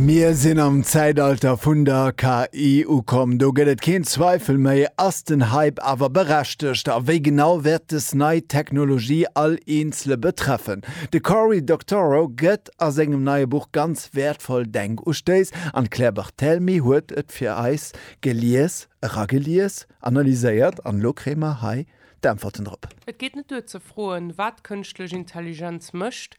Mir sinn am Zäitalter vun der KI ukomm, do gëtt et keen Zweifel méi. Ass den Hype awer berechtegt? A wéi genau wäert dës nei Technologie all Eenzele betreffen? De Cory Doctorow gëtt a sengem neie Buch ganz wäertvoll Denkustéiss an d'Claire Barthelmy huet et fir eis gelies, eragelies, analyséiert an elo kréie mer hei d'Äntwerten drop. Et geet net duer ze froen, wat kënschtlech Intelligenz mécht,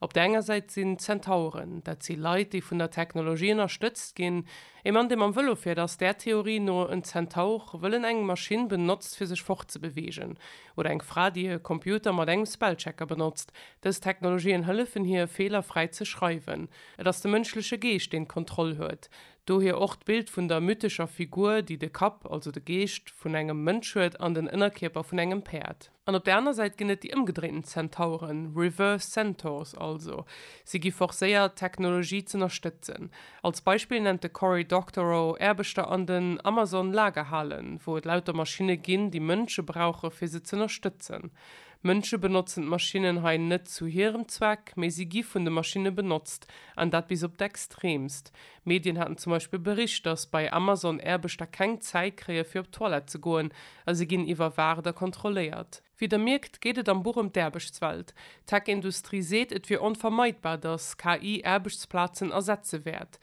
Op der enger Säit sinn d'Zentauren, dat si Leit, déi vun der Technologie ënnerstëtzt ginn. Ee Mann, dee mam Vëlo fiert, ass där Theorie no en Zentaur, wëll en eng Maschinn benotzt, fir sech fortzebeweegen. Oder eng Fra, déi e Computer mat engem Spellchecker benotzt. Dës Technologien hëllefen hir, Feeler fräi ze schreiwen. Et ass de mënschleche Geescht, deen d'Kontroll huet. Dohier och d'Bild vun der mythescher Figur, déi de Kapp, also de Geescht, vun engem Mënsch huet an den Ënnerkierper vun engem Päerd. An op der aner Säit ginn et déi ëmgedréinten Zentauren, reverse centaurs also. Si gi forcéiert, d'Technologie z'ënnerstëtzen. Als Beispill nennt de Cory Doctorow Aarbechter an den Amazon-Lagerhalen, wou et lauter Maschinne ginn, déi Mënsche brauche fir se z'ënnerstëtzen. Mënsche benotzen d'Maschinnen hei net zu hirem Zweck, mee si gi vun de Maschinne benotzt, an dat bis op d'Extreemst. Medien haten zum Beispill bericht, datt bei Amazon Aarbechter keng Zäit kréie fir op d'Toilette ze goen, a si ginn iwwerwaacht a kontrolléiert. Wéi der mierkt, geet et am Buch ëm d'Aarbechtswelt. D'Tech-Industrie seet, et wier onvermeidbar, datt KI Aarbechtsplazen ersetze wäert.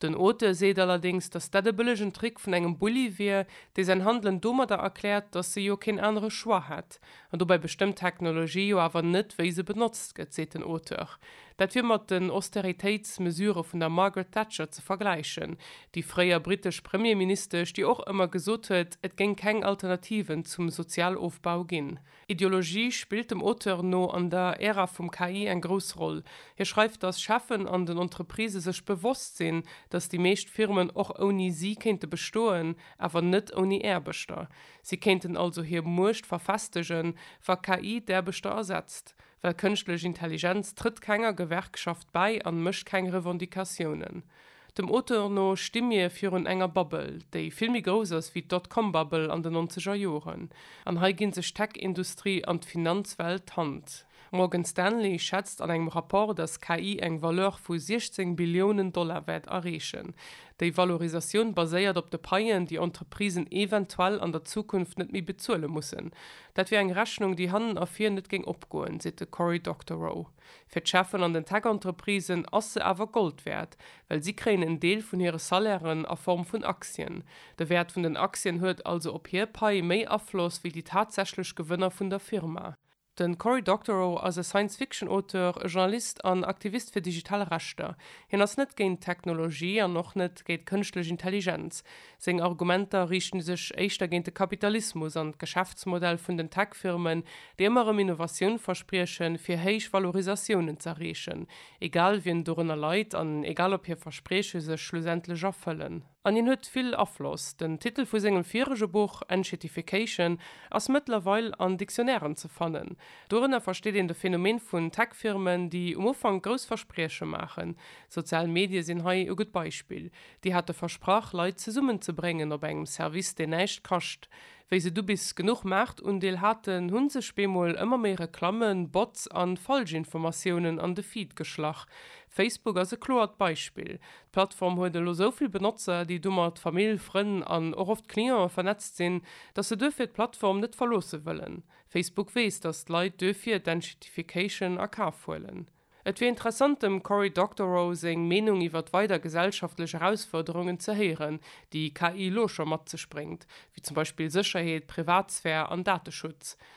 Den Auteur seet allerdéngs, datt dat e bëllegen Trick vun engem Bulli wier, dee säin Handelen domadder erkläert, datt e jo keen anere Choix hätt. An dobäi bestëmmt d'Technologie jo awer net, wéi se benotzt gëtt, seet den Auteur. Dat wier mat den Austeritéitsmesurë vun der Margaret Thatcher ze vergläichen, déi fréier brittesch Premierministesch, déi och ëmmer gesot huet, et géing keng Alternativen zum Sozialofbau ginn. Ideologie spillt dem Auteur no an der Ära vum KI eng grouss Roll. Hie schreift, datt Cheffen an den Entreprisë sech bewosst sinn, datt déi meescht Firmen och ouni si kéinte bestoen, awer net ouni Aarbechter. Si kéinten also hir Muecht verfestegen, wa KI d'Aarbechter ersetzt, well kënschtlech Intelligenz trëtt kenger Gewerkschaft bäi an mécht keng Revendicatiounen. Dem Auteur no sti mir virun enger Bubble, déi vill méi grouss ass wéi d'Dotcom-Bubble an den nonzeger Joren. An hei gi sech d'Tech-Industrie an d'Finanzwelt d'Hand. Morgan Stanley schätzt an engem Rapport, datt KI eng Valeur vu 16 Billiounen Dollar wäert erreechen. Déi Valorisatioun baséiert op de Paien, déi Entreprisen eventuell an der Zukunft net méi bezuele mussen. Dat wier eng Rechnung, déi hannen a vir net géing opgoen, seet de Cory Doctorow. Fir d'Cheffen an den Tech-Entreprisen ass se awer Gold wäert, well si kréien en Deel vun hire Salairen a Form vun Aktien. De Wäert vun den Aktien huet also op hir Pai méi Afloss wéi déi tatsächlech Gewënner vun der Firma. Den Cory Doctorow ass e Science-Fiction-Auteur, e Journalist an Aktivist fir digital Rechter. Hien ass net géint d'Technologie an och net géint kënschtlech Intelligenz. Seng Argumenter riichte sech éischter géint de Kapitalismus an d'Geschäftsmodell vun den Tech-Firmen, déi ëmmer erëm Innovatioun verspriechen, fir héich Valorisatiounen z'erreechen, egal wien dorënner leit an egal ob hir Versprieche sech schlussendlech erfëllen. An hien huet vill Afloss. Den Titel vu sengem virege Buch, Enshittification, ass mëttlerweil an Dictionnairen ze fannen. Dorënner versteet een de Phänomen vun Tech-Firmen, déi um Ufank grouss Versprieche maachen. Sozial Medie sinn hei e gutt Beispill. Déi hate versprach, Leit zesummen ze bréngen op engem Service, deen näischt kascht. Wéi se du bis genuch Maartundeel haten, hu sech bemol ëmmer méi Reklammen, Bots an Falschinformatiounen an de Feed geschlach. Facebook ass e kloert Beispill. D'Plattform huet elo esou vill Benotzer, déi domat Famill, Frënn an och oft Clientë vernetzt sinn, datt se duerfir d'Plattform net verloosse wëllen. Facebook weess, datt d'Leit duerfir d'Enshittification a Kaf huelen. Et wier interessant dem Cory Doctorow seng Meenung iwwert weider gesellschaftlech Erausfuerderungen ze héieren, déi KI elo scho mat sech bréngt, wéi zum Beispill Sécherheet, Privatsphär an Dateschutz.